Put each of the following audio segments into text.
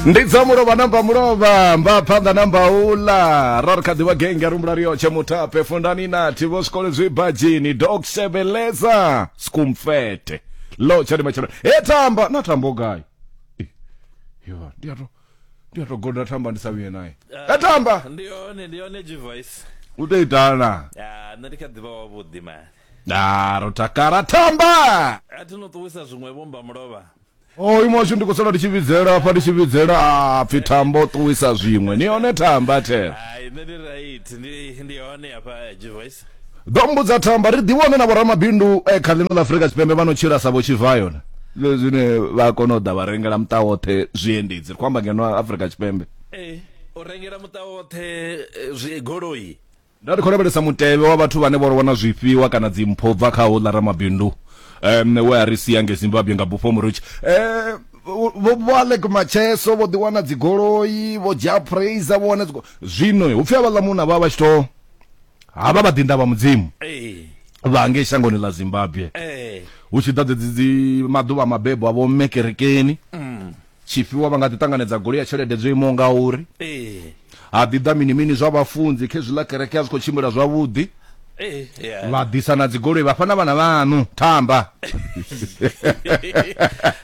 ndi dza mulovha namba mulovha mba phanḓa namba uḽa ra ri kha ḓivha genge ya rumbula riyotshe mutape fundani nathi vho zwikole zwi badzhini dok sebeleza skumfete lo tshani matshelo he tamba na tambo gai Eh, yo ndi a to ndi a to goda tamba ndi sa vhuye naye he tamba ndi yone ndi yone g-voice u tou itana ya nṋe ndi kha ḓivha wavhuḓi mani a ro takala tamba a thi no ṱuwisa zwiṅwe vhomba mulovha oyu oh, mwashu ndi khou sala ndi tshi vhidzela afha ndi tshi vhidzela a pfhi thambo ṱuwisa zwiṅwe ni hone thamba thela ḓo mbudza thamba ri ḓivhone na vhoramabindu e kha ḽino ḽa afurika tshipembe vha no tshila sa vho tshivayona zwine vha kona u ḓa vha rengela muṱa woṱhe zwiendedzi ri khou amba ngeno afurika tshipembe eh, u rengela muṱa woṱhe eh, goloi Nda ri khou lavhelesa mutevhe wa vhathu vhane vho ro wana zwifhiwa kana dzimpho u bva kha houḽa ramabindu um we a ri sia nge Zimbabwe nga bufho murutshi um vho vho Alec Macheso vho ḓiwana dzigoloi vho dzhia praiser vho wana zwino hu pfhi havhaḽa munna vha vha tshi to havha vha ḓinḓa vha mudzimu vha ngei shangoni ḽa Zimbabwe hu tshi ḓa dzedzi dzi maḓuvha mabebo a vho mme kerekeni mm. Tshifhiwa vha nga ḓi ṱanganedza goloi ya tshelede dzo imaho ngauri. Ee. Ha ḓi ḓa mini mini zwa vhafunzi khezwiḽa kereke a zwi khou tshimbila zwavhuḓi. Ee. Yeah. Vha ḓisa na dzigoloi vhafha na vhana vhaṋu thamba.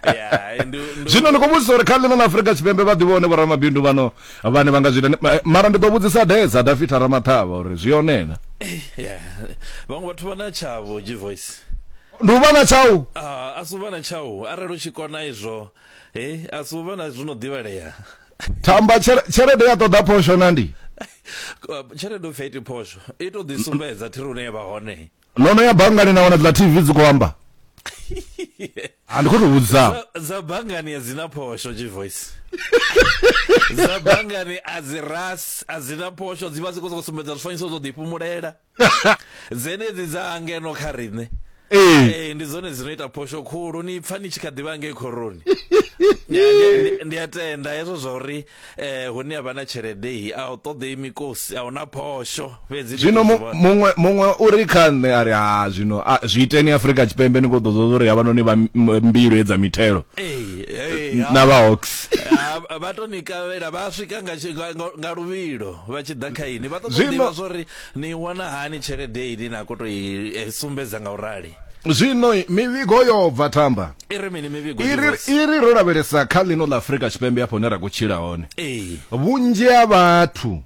Yeah, ndu ndu Zwino ndi khou vhudzisa uri kha ḽino ḽa Afrika Tshipembe vha ḓivha hone vhoramabindu vhano vhane vha nga zwi ita ni- ma- mara ndi ḓo vhudzisa Deza Dafita Ramaṱhavha uri zwi hone na. yeah. Vhaṅwe vhathu vha na tshavho G voice. Ndi u vha na tshau. Ah, a si u vha na tshau arali u tshi kona izwo He, a si u vha na zwo no ḓivhalea. Thamba, tshere- tshelede ya ṱoḓa phosho na ndi. Tshelede u pfi a iti phosho, i tou ḓi sumbedza thiri hune ya vha hone. No no ya banngani na wana dziḽa TV dzi khou amba? A ndi khou tou vhudzisavho. Dza- Dza banngani a dzi na phosho, G-Voice. Dza banngani a dzi ras, a dzi na phosho, dzi vha dzi khou sokou sumbedza zwifanyiso zwo ḓifhumulela. dzenedzi dza ngeno kha riṋe ee ndi dzone dzino ita phosho khulu ni pfa ni tshi kha ḓivha ngei khoroni ndi a tenda hezwo zwa uri um hune ya vha na tshelede i a u ṱoḓei mikosi a huna phosho fhedzi zwino muṅwe muṅwe u ri kha nṋe a ri ha zwino zwi iteni afrika tshipembe ni khou ḓo ḓoḓa uri havhanoni vha mbilu edza mithelo na vha hawks vha to ni kavhela vha swika nga luvhilo vha tshi ḓa kha ini vha ṱoḓa ḓivha zwa uri Ni i wana hani tshelede ine na khou tou i sumbedza nga u rali? Zwino mivhigo yo bva Tamba. I ri mini mivhigo, I ri, i ri ro lavhelesa kha ḽino ḽa Afrika Tshipembe hafha hune ra khou tshila hone, Ee. vhunzhi ha vhathu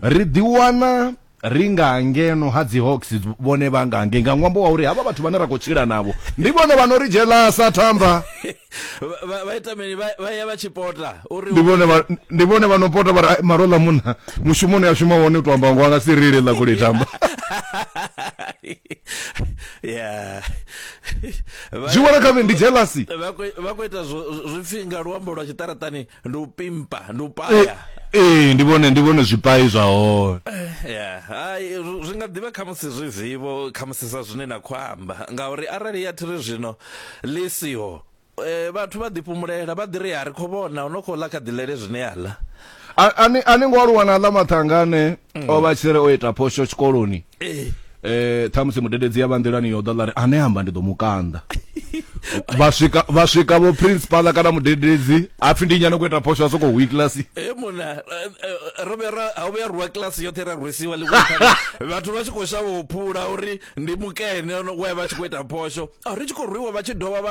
ri ḓiwana ri nga ngeno ha dzi Hawks vhone vha nga ngei nga ṅwambo wa uri havha vhathu vhane ra khou tshila navho ndi vhone vha no ri dzhelasa Tamba. vha vha ita mini vha ya vha tshipota uri ndi vhone vha ndi vhone vha no pota vha ri maro ḽa munna mushumoni a shuma hone u to amba ngo nga si rile ḽa kule tamba yeah zwi vhona kha ndi jealousy vha khou ita zwipfi nga luambo lwa tshiṱaratani ndi u pimpa ndi u paya ee ndi vhone ndi vhone zwipai zwa hone ya hai ri- zwi nga ḓivha khamusi zwi zivho khamusi sa zwine na khou amba ngauri arali ya thiri zwino ḽi siho eh, vhathu vha ḓifhumulela vha ḓi ri ya ri khou vhona u no khou ḽa kha ḓilele zwine ya ḽa A- ani ani ngo aluwa na ḽa mathangane o vha tshiri o ita phosho tshikoloni eh eh thamusi mudededzi ya vhanḓelani yo ḓa ḽari ane amba ndi ḓo mu kanḓa vha swika vha swika vho principal kana mudededzi apfi ndi nyane ku ita phosho asoko hu class eh mona eh, eh, ro vera ha vhuya ruwa class yoṱhe ra rwisiwa ḽi vhathu vha tshi khou shavha u phula uri ndi mukene we vha tshi khou ita phosho a ri tshi khou rwiwa vha tshi dovha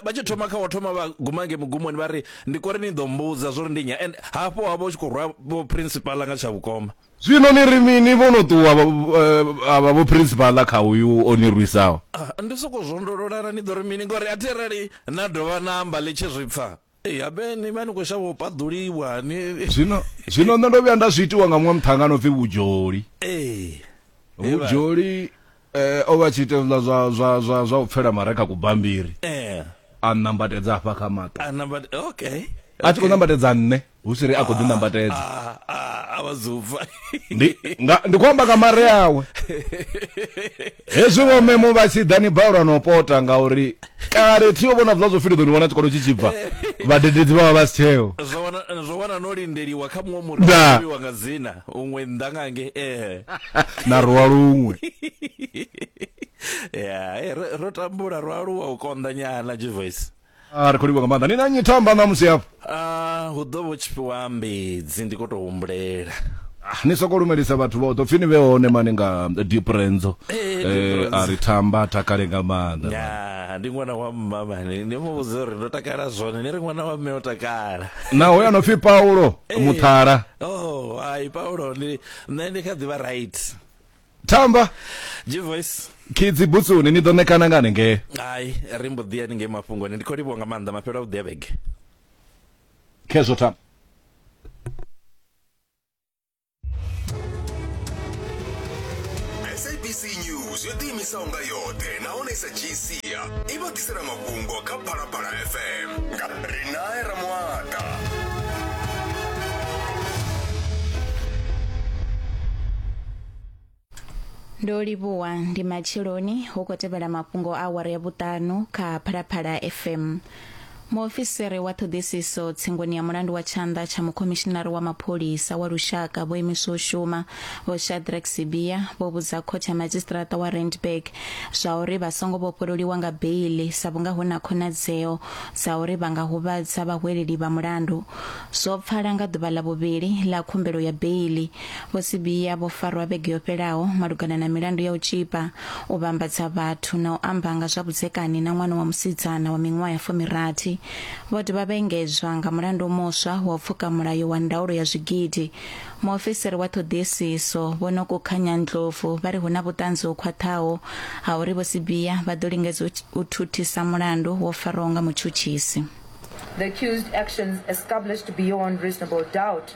vha tshi thoma kha wa thoma vha guma nge mugumoni vha ri ndi kori ni ḓo mbudza zwo ri ndi nya and hafho ha vha u tshi khou rwa vho principal nga tsha vhukoma Zwino ni ri mini? Vho no ṱuwa vha vha vhophirinsipala kha uyu o ni rwisaho. Ndi sokou zwondolola na ni ḓo ri mini? Ngori a thi arali na dovha na amba ḽi tshi zwi pfa, habe ni vha ni khou shavha u paḓuliwa ni. Zwino, zwino nṋe ndo vhuya nda zwi itiwa nga muṅwe muṱhannga a no pfi Vhujoli. Ee. Vhujoli. eh, o vha tshi ita zwiḽa zwa zwa zwa zwa u pfela mare kha kubambiri eh. a nambatedza hafha kha maṱo a nambat okay a tshi khou nambatedza nṋe hu si ri a khou ḓi ah, nambatedza ah, ah, a vha zufa ndi nga ndi khou amba nga mare awe hezwi vho memo vha tshi ḓa ni balelwa no pota ngauri kale thi yo vhona zwiḽa zwo fhili ḓo ni wana tshikolo tshi tshi bva vhadededzi vha vha vha si tsheo zwo wana zwo wana no lindeliwa kha muṅwe muri Da. wa nga dzina huṅwe nnḓa nga nge eh na ruwa luṅwe ya eh, ro- ro tambula ro aluwa u konḓa nyana jivoice a ri khou livha nga maanḓa ni na nyi thamba ṋamusi hafho Ah, hu ḓo vho tshifhiwa mbedzi ndi khou tou humbulela Ah, ni soko lumelisa vhathu vhoṱhe upfi ni vhe hone mani nga deep renzo Eh, Deep Eh, Renzo. a ri thamba a takale nga maanḓa ya ndi ṅwana wa mma mani ni mu vhudze uri ndo takala zwone ni ri ṅwana wa mme o takala na hoyo ano pfi paulo Eh. muthala oh ai paulo ndi nṋe ndi kha ḓivha right tamba G voice kidzi butsuni ni ḓo ṋekana nga hanengei hai ri mbo ḓi ya ni ngei mafhungoni ndi khou livhuwa nga maanḓa mafhelo a vhuḓi a vhege khezwo tamba sabc news yo ḓiimisaho nga yoṱhe nahone i sa dzhii sia i vha ḓisela mafhungo kha phalaphala fm nga rinae ramuata ndo livhuwa ndi matsheloni hu khou tevhela mafhungo a awara ya vhuṱanu kha phalaphala fm muofisiri wa ṱhoḓisiso tsingoni ya mulandu wa tshanḓa tsha mukhomishinari wa mapholisa wa lushaka vho imiswa u shuma vho shadrack sibia vho vhudza khothe ya madzhisiṱiraṱa wa randburg zwa uri vha songo vhofhololiwa nga beili sa vhunga hu na khonadzeo dza uri vha nga huvhadza vhahweleli vha mulandu zwo pfala nga ḓuvha ḽa vhuvhili ḽa khumbelo ya beili Vho Sibiya vho farwa vhege yo fhelaho malugana na milandu ya u tzhipa, u vhambadza vhathu na u amba nga zwa vhudzekani na ṅwana wa musidzana wa miṅwaha ya fumirathi. Vho dovha vha engedzwa nga mulandu muswa wa u pfuka mulayo wa ndaulo ya zwigidi. Muofisiri wa ṱhoḓisiso Vho Nokukhanya Ndlovu vha ri hu na vhuṱanzi ho khwaṱhaho ha uri Vho Sibiya vha ḓo lingedza u thuthisa mulandu wo farwaho nga mutshutshisi. The accused actions established beyond reasonable doubt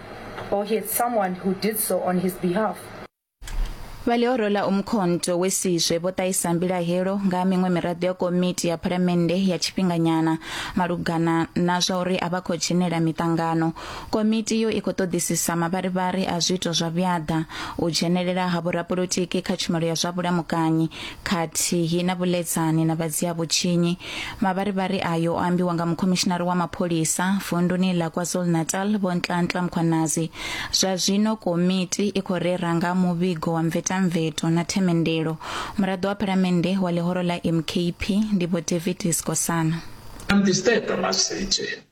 or he had someone who did so on his behalf. Vhalioro ḽa Umkhonto we Sizwe vho ṱahisa mbilahelo nga ha miṅwe miraḓo ya komiti ya phalamennde ya tshifhinganyana malugana na zwa uri a vha khou dzhenela miṱangano. Komiti iyo i khou ṱoḓisisa mavharivhari a zwiito zwa vhuaḓa, u dzhenelela ha vhorapolotiki kha tshumelo ya zwa vhulamukanyi, khathihi na vhuledzani na vha dzia vhutshinyi. Mavharivhari ayo o ambiwa nga mukhomishinari wa mapholisa vunduni ḽa KwaZulu-Natal Vho Nhlanhla Mkhwanazi. Zwa zwino komiti i khou rera nga muvhigo wa mvetamveto na themendelo. Muraḓo wa phalamennde wa ḽihoro ḽa MKP ndi Vho David Skosana. Antistepa Masitshe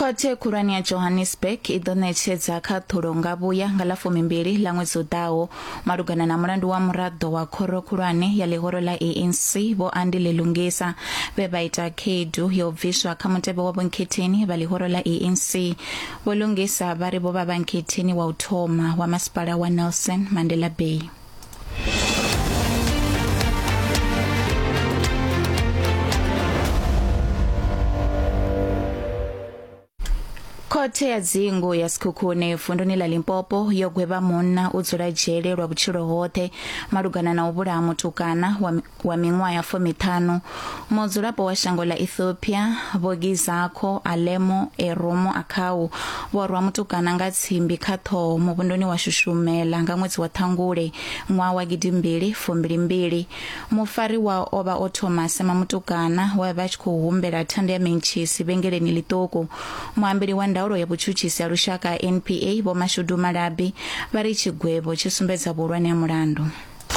khothe khulwane ya johannesburg i ḓo ṋetshedza khaṱhulo nga vhuya nga ḽa fumimbili ḽa ṅwedzi u ḓaho malugana na mulandu wa muraḓo wa khoro khulwane ya ḽihoro ḽa anc vho andi ḽilungisa vhe vha ita khaedu ya u bviswa kha mutevhe wa vhonkhetheni vha ḽihoro ḽa anc Vho Lungisa vha ri vho vha vhanketheni wa u thoma wa masipala wa Nelson Mandela Bay. khothe ya dzingu ya sikhukhune vunduni ḽa limpopo yo gwevha munna u dzula dzhele lwa vhutshilo hoṱhe malugana na u vhulaha mutukana wa mi- wa miṅwaha fumiṱhanu, mudzulapo wa shango ḽa Ethiopia, vho Gizakho, Alemo, Eromo, Akhau, vho rwa mutukana nga tsimbi kha ṱhoho muvhunduni wa Shushumela nga ṅwedzi wa Ṱhangule ṅwaha wa gidimbili fumbilimbili. Mufariwa o vha o thoma a sema mutukana we a vha a tshi khou humbela thanda ya mentshisi vhengeleni ḽiṱuku. Muambeli wa ndaulo ya vhutshutshisi ha lushaka ha NPA, Vho Mashudu Malabi, vha ri tshigwevho tshi sumbedza vhuhulwane ha mulandu.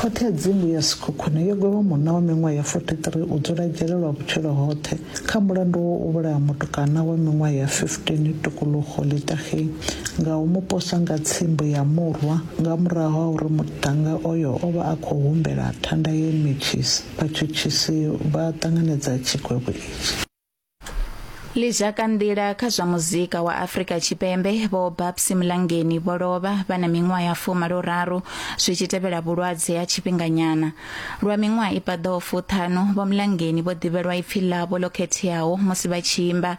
Khothe ya dzingu ya Sekhukhune yo gwevha munna wa miṅwaha ya 43 u dzula dzhele lwa vhutshilo hoṱhe kha mulandu wa u vhulaha mutukana wa miṅwaha ya 15 Tukuluxo Litageng nga u mu posa nga tsimbo ya murwa nga murahu ha uri muṱhannga oyo o vha a khou humbela thanda ye metshisi vhatshutshisi vha ṱanganedza tshigwevho itshi. Ḽizhakanḓila kha zwa muzika wa Afrika Tshipembe vho Babsy Mlangeni vho lovha vha na miṅwaha ya fumalo-raru zwi tshi tevhela vhulwadze ha tshifhinganyana. Lwa miṅwaha i paḓaho fuṱhanu, vho Mlangeni vho ḓivhelwa ipfi ḽavho ḽo khetheaho musi vha tshi imba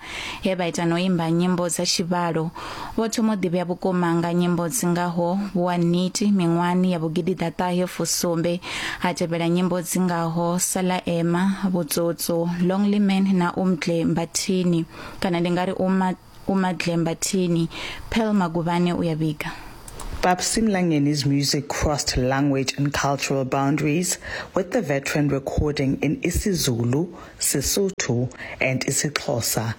he vha ita na u imba nyimbo dza tshivhalo Vho thoma u ḓivhea vhukuma nga nyimbo dzi ngaho Vhuwa Niti miṅwahani ya vhugidi ḓaṱahe fusumbe ha tevhela nyimbo dzi ngaho Sala Ema, Vhutsotso, Lonely Man na Umdle Mbathini kana ndi nga ri Uma Umadle Mbathini, Pearl Maguvhane u ya vhiga. Babsy Mlangeni's music crossed language and cultural boundaries, with the veteran recording in isiZulu, Sesotho, and isiXhosa.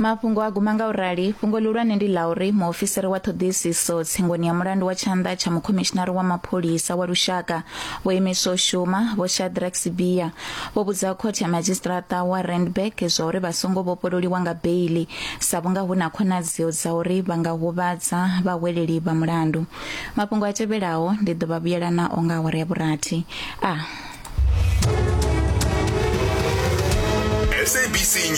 mafhungo a guma nga u rali fhungo lihulwane ndi ḽa uri muofisiri wa ṱhoḓisiso tsingoni ya mulandu wa tshanḓa tsha mukhomishinari wa mapholisa wa lushaka vho imiswa u shuma vho shadrack sibia vho vhudza khothe ya madzhisiṱiraṱa wa randburg zwa uri vha songo vhofhololiwa nga beili sa vhunga hu na khonadzeo dza uri vha nga huvhadza vhahweleli vha mulandu mafhungo a tevhelaho ndi ḓo vha vhuyela nao nga awara ya vhurathi a ah.